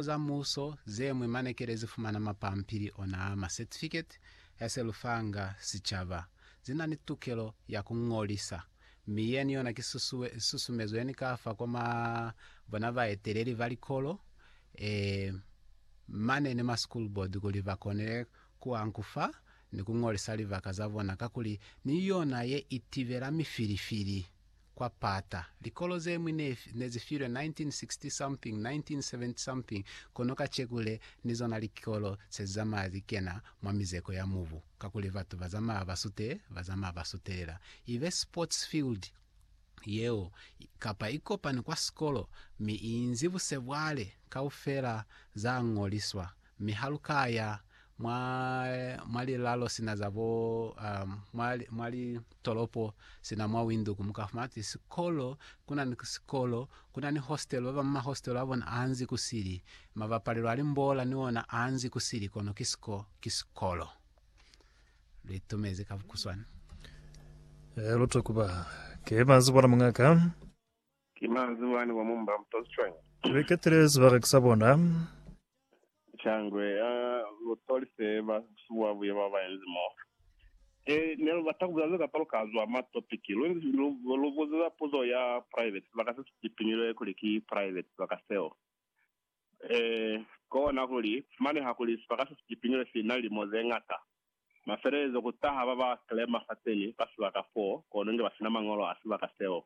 Likolelo za Muuso ze ñwi mane kele zi fumana mapampili ona a ma Certificate ya se lu fanga sicaba. Zi na ni tukelo ya ku ñolisa, mi yeni yona ki susumezo ye ni ka fa kwa ma bona baeteleli ba likolo e mane ni ma School Board kuli ba konele ku ankufa ni ku ñolisa libaka za bona kakuli ni yona ye i tibela mifilifili. kwa pata. Likolo ze ñwi ne, ne zi filwe 1960 something, 1970 something, kono kaceku le, ni zona likolo se zi zamaya zi kena mwa mizeko ya mubu, kakuli batu ba zamaya ba sute, ba zamaya ba sutelela. Ibe sports field yeo, kapa ikopani kwa sikolo, mi i inzi busebwale kaufela za ñoliswa, Mi ha lu ka ya mwa, mwa lilalo sina za bo, um, mwa, mwa litolopo sina mwa Windhoek, mu ka fumana kuti sikolo, ku na ni sikolo, ku na ni hostelo, ba bañwi mahostelo a bona a nzi ku sili, mabapalelo a limbola ni ona a nzi ku sili, kono ki siko, ki sikolo. Lu itumezi ka bukuswana. Ee, lu to kuba. Ke ba nzi bona muñ'a ka. Ki manzwi wani wa mu mba mto cwañi? Li ketile sibaka sa bona. Shangwe ya lutoli se ba suwa buya ba ba inzi mo. Ki ne lu bata ku bulela ze kapalo ka zwa ma topiki. Lu inzi lu, lu buziza puzo ya private sibaka se si tipiñilwe kuli ki private sibaka seo. Eh, kona kuli, fumaneha kuli sibaka se si tipiñilwe si na lilimo ze ngata. Mafelelezo ku taha ba ba claimer fateni fa sibaka foo, kono inge ba sina mañolo a sibaka seo.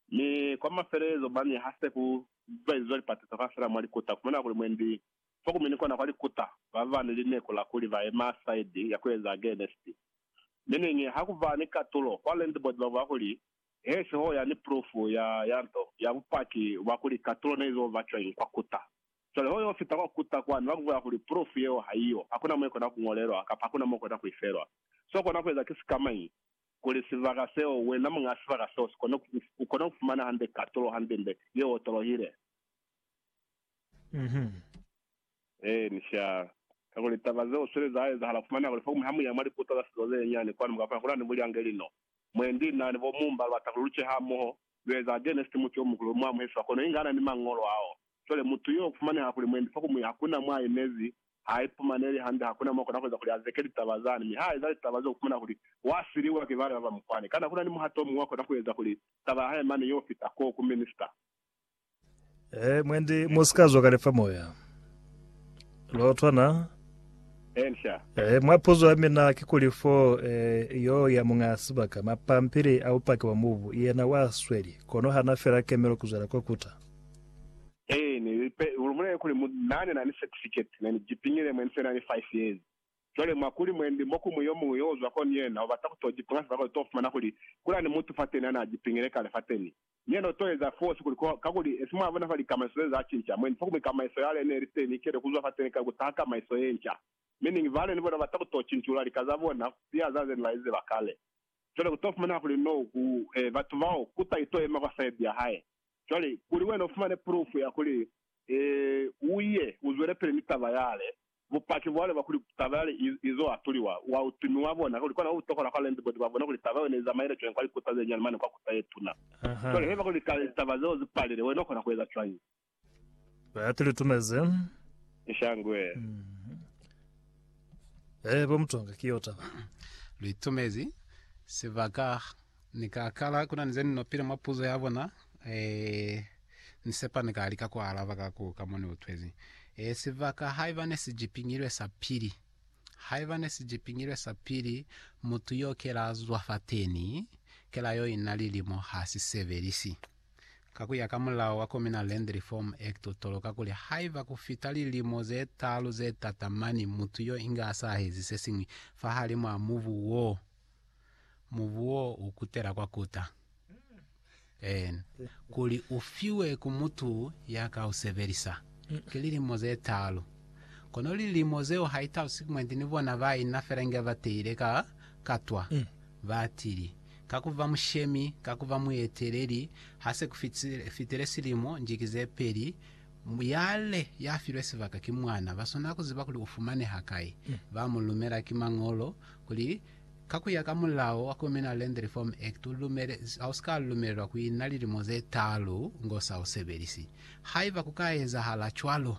Mi kwa mafelelezo, mane ha se ku zwaizwa lipatiso kaufela mwa likuta, ku fumana kuli mwendi fo ku mi ni kona kwa likuta ba ba ni lineku la kuli ba yema saidi ya ku eza agenesti. Mi niñi ha ku ba ni katulo kwa landlord ba bwa kuli, He siho ya ni pulufu ya, ya nto, ya bupaki bwa kuli katulo ne izo ba cwañi kwa kuta. Cwale ho yo fita kwa kuta kwani, ba ku bulela kuli, Pulufu yeo ha iyo, ha ku na mo i kona ku ñolelwa, kapa ha ku na mo u kona ku i felwa. So u kona ku eza ki sikamañi? kuli sibaka seo, wena muñaa sibaka seo, u kone ku fumana hande katulo hande-nde ye otolohile. Ee, ni sha. Kakuli taba zeo sweli za ezahala. Fumana kuli fokumu ha mu ya mwa liputo za sizo ze nyani kwanu, mu ka fumana kuli na ni bulyange lino. Mwendi na ni bo Mumba lu bata kuli lu ce hamoho, lu eza Genesiti muti o muhulu, lu mu amuhe siba kono inga ana ni Mañolo ao. Cwale, mutu yo ufumaneha kuli mwendi fa kumuya, hakuna mwa aimezi, ha aipumaneli hande, hakuna mwa kona kueza kuli azeke litaba zani, mi ha eza litaba zeo ukumana kuli wa siliwa ki bana baba mukwani. Kana kuna ni muhato omuñwi wa kona kueza kuli taba ya hae mane yo fita ko ku minista? Ee, mwendi, musika zwa kale fa moya. Lwa utwana? Ee, nca. Ee, mwa puzo ya mina kikuli, fo, ee, yo ya muñ'a sibaka, mapampili a bupaki bwa mubu, yena wa sweli, kono hana fela kemelo kuzwela ko kuta. Ee, ne li pe, lu bulele kuli mu, na ne na ni certificate, ne ni jipingile mwe ni se na ni five years. Cwale, mwa kuli mwendi mo kumu yomuñwi yo uzwa kono yena u bata ku to jipinga sebaka u to fumana kuli kula ni mutu fateni ana jipingile kale fateni, mi yena u to eza fosi kuli ko, kakuli esi mwa bona fa likamaiso ze za cinca, mwendi fa kumu kamaiso yale ne li teni ikele kuzwa fateni kale ku taha kamaiso yenca. Meaning, bale ni bona bata ku to cincula lika za bona ku siya za ze ne ba li ziba kale. Cwale ku to fumaneha kuli no, ku, e, batu bao, kuta i to yema kwa side ya hae. Cwale, kuli wena ufumane pulufu ya kuli, ee, uye uzwelepele ni taba yale, bupaki bwale bwa kuli taba yale i, izo atuliwa, wa utumi wa bona, kuli kona utokola kwa landibodi ba bona kuli taba yeo neizamaile cwañi kwa likuta zenyani mane kwa kuta yetuna. Cwale, haiba kuli kale litaba zeo zipalile, wena ukona kueza cwañi? Ba ati litumeze. Nshangwe. Ee, bo Mutonga, ki yo taba. Litumezi, sibaka Ni ka kala kuna ni ze ni nopile mwa puzo ya bona. Eeh, ni sepa ni ka lika ku alaba ka ku ka mo ni utwezi. Eeh, sibaka haiba ne si jipingilwe sa pili. Haiba ne si jipingilwe sa pili, mutu yo ke la zwa fateni, ke la yo ina lilimo ha si sebelisi. Ka ku ya ka mulao wa Communal Land Reform Act u toloka kuli haiba ku fita lilimo ze talu ze tatamani mutu yo inga asahezi se siñwi fahalimu a mubu woo, mubu wo u kutela kwa kuta. En. Kuli u fiwe ku mutu ya ka u sebelisa, ki lilimo ze taalu. Kono lilimo zeo ha i talusi kmwendi ni bona ba i na fela inge ba teile ka katwa. Ba tili, Ka ku ba mushemi, ka ku ba mueteleli, ha se ku fitile silimo, njiki ze peli, yale ya filwe sibaka ki mwana. Ba swanela ku ziba kuli u fumaneha kai. Ba mu lumela ki Mañolo kuli Ka ku ya ka mulao wa Communal Land Reform Act, u lumele, ha u si ka lumelelwa ku ina lilimo ze taalu ngo sa u sebelisi. Haiba ku ka ezahala cwalo,